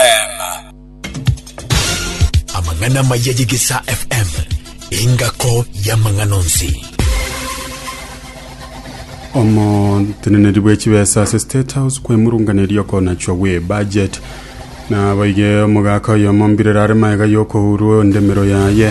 FM. Amang'ana amaya y'Egesaa FM, engako y'amang'ana onsi. omoteneneri bw'echibesa ase state house kwemurunganeria okonachwa gw'ebudget naboige omogaka oyomo mbirero are maega y'okohurwa endemero yaye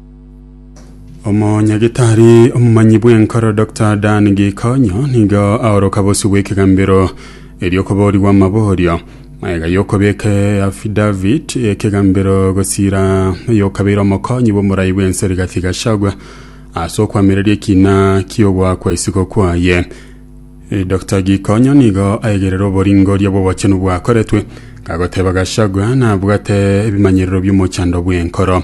omonyagitari omomanyi bw'enkoro dr dan gikonyo nigo aoroka bosi bw'ekegambero eriokoboorigwa amaboorio magega y'okobeka eafidavit y'ekegambero gosiira oyokabeire omokonyi bw'omorai bw'ense rigathi gachagua ase okwamereria ekina ki'ogwa kwa isiko kwaye Eh, Dr Gikonyo nigo aegerera oboringoria bw'obochenu bwakoretwe gagoteba Gachagua nabwate ebimanyerero by'omochando bw'enkoro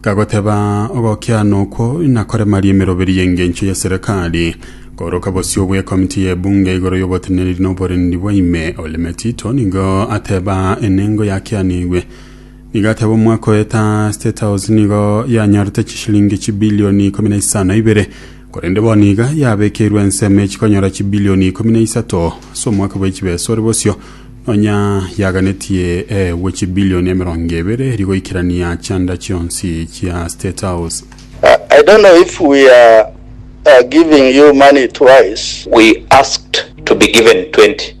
kagoteba, Ogokiana okwo nakoremarie emeroberi y'engencho ya serikali, kooroka bosio bw'ekomiti y'ebunge igoro y'oboteneneri na oborendi bwa ime. Ole Metito nigo ateba enengo yakianigwe. Nigo ateba omwaka oeta State House nigo yanyorete chishilingi chibilioni ikomi na isano na ibere Korende bono iga yabekeirwe ensemo echikonyora chibilioni ikomi na isato ase omwaka bwe chibesa ore bosio, nonya yaganetie eegwe chibilioni emerongo ebere eria goikerania chianda chionsi chia State House. Uh, I don't know if we are uh, giving you money twice. We asked to be given 20.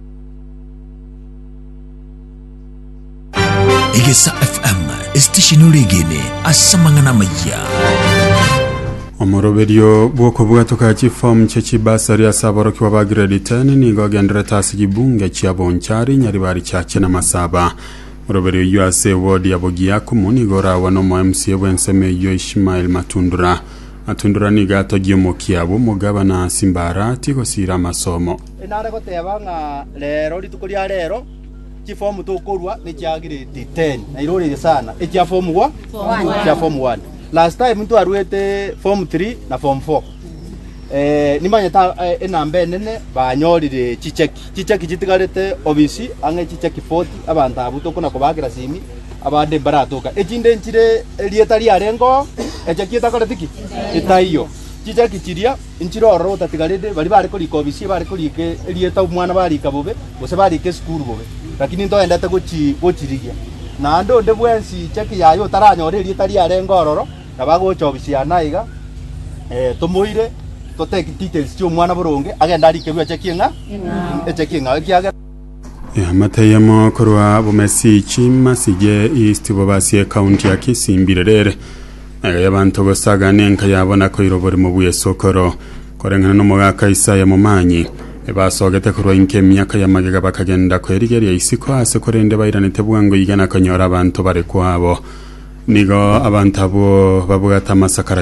Egesa FM esitesheni oregene ase amang'ana amayia. omoroberio bw'okobwatoka chiform chia chibasari ase aborokigwa ba grade 10 nigo ogenderete ase chibunge chia bonchari nyaribari chiache na masaba moroberio oyio ase ewodi ya bogiakumu nigo oragwa na omo mca bw'ensemo eyio ishmael matundura matundura nigo atogia omokia bw'omogabana simbarati gosiira amasomo Enare goteba ng'a reero, rituko ria reero, chifomu tokorua nechia grade ten, na iroreire sana echia form one, echia form one. Last time ntwaruete form three na form four. Eh, nimanyete a- eh, enamba enene banyorire chicheki chicheki chitigarete obisi ang'e chicheki 40 abanto abwo tokona kobakera simi abande mbaratoka echinde nchire erieta riarengeo echeki etakoreti ki etaiyo Chichaki chiria nchire ororo gotatigareti baria bare korika obisia, bare korika erieta omwana barika bobe, gose barika esukuru bobe, lakini ntoendete gochi- gochirigia. Naende onde bwensi chichaki yaye otaranyore erieta riarenge ororo, nabo agocha obisia ane aiga, eh, tomoire, to take details chi'omwana boronge, agende arikerwe achakie ng'a echakie ng'ao, ekiagera Eamate eyemo korwa bomesi Chimasi ye East bobasie County ya Kisii mbirerere. Nayo y'abanto gosaga nenka yabo na koira oborimo bw'esokoro, koreng'ana n'omogaka Isaya momanyi, ebasogete korwa inki emiaka ya magega bakagenda kwerigeria isiko aase korende bairanete bwango iga na konyora abanto bare kwabo. Nigo abanto abwo babwate amasakara